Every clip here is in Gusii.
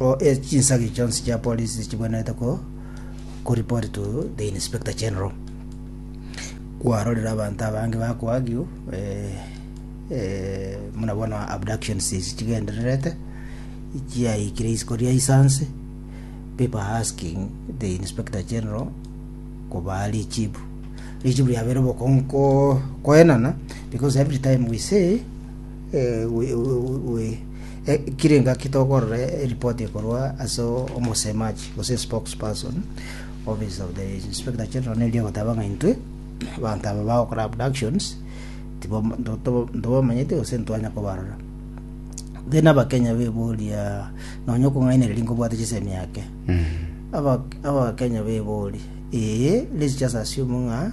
or e chinsagi chionsi chia polisi chibwenerete ko ko report to the inspector general kwarorire abanto abange bakoagio eh, eh, muna bono abductions isi chigendererete chiaikire isiko ria isanse people are asking the inspector general kobaa richibu richibu riabere bokonko koenana because every time we say Kire engaki tokorora eripoti ekorwa ase omosemachi, gose spokesperson, office of the Inspector General neri egoteba ng'a intwe abanto aba bagokora abductions tibam- nto- to- ntobamanyeti gose ntitwanya kobarora then abakenya beboria nonya okong'ainereria nkobwate chisemi ake Aba- abakenya beboria ee let's just assume ng'a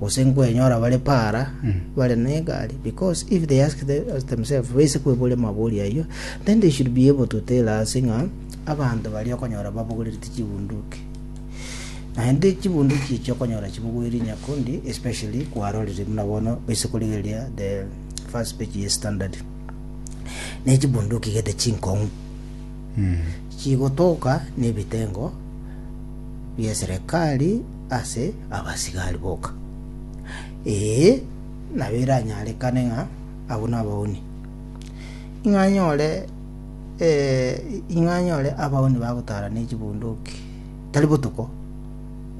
gose nkwenyora bare paara bare negari, because if they ask the, us themselves, baise kweboria mabori ayio, then they should be able to tell us ng'a abanto baria okonyora babogoreretie chibunduki. Naende chibunduki echi okonyora chibogoiri nyakundi, especially kwarorire buna bono baise korigereria the first page ye standard. Ne chibunduki gete chinkong'u chigotoka n'ebitengo bia serikali ase abasigari boka, ee, nabo eranyarekane ng'a abwo nabauni, ing'a anyore ing'a anyore abauni bagotara ne chibunduki, tari botuko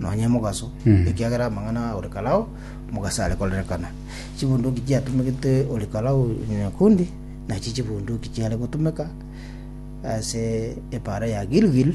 nonya emogaso, ekiagera amang'ana a Ori-Kalao mogaso are korerekana. Chibunduki chiatomegete Ori-Kalao nyakundi nachio chibunduki chiare gotomeka ase epaara ya Gilgil,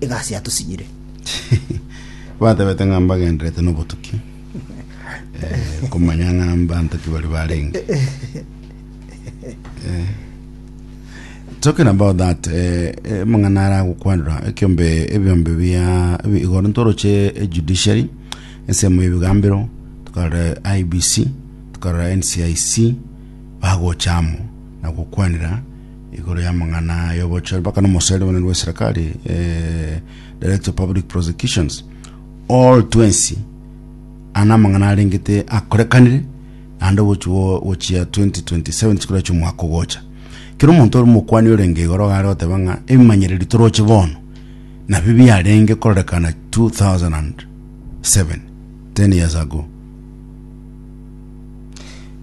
egasi yatosinyire. Batebete ng'a mbagendererete nobotuki, eh, komanya ng'a mbanto ki baria barenge. Talking about that, eh, eh, mang'ana ara agokwanera ekiombe ebiombe bia ebi- igoro ntoroche eh, judiciary ensemo y'ebigambero tukarora IBC tukarora NCIC bagochamo na gokwanera igoro y'amang'ana y'obochori mpaka n'omosaeri omonene bw'eserekari eh, Director of Public Prosecutions all twensi ana amang'ana arengete akorekanire naende obochi bwo- gochia 2027 chikora chi'omwaka ogocha kero omonto ore omokwani orenge igoro gare goteba ng'a ebimanyereri toroche bono nabio biarenge kororekana 2007 10 years ago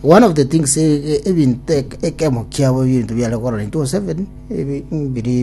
One of the things, ebinto ekemo kiabo ebinto biare kororentwe gose 7 biri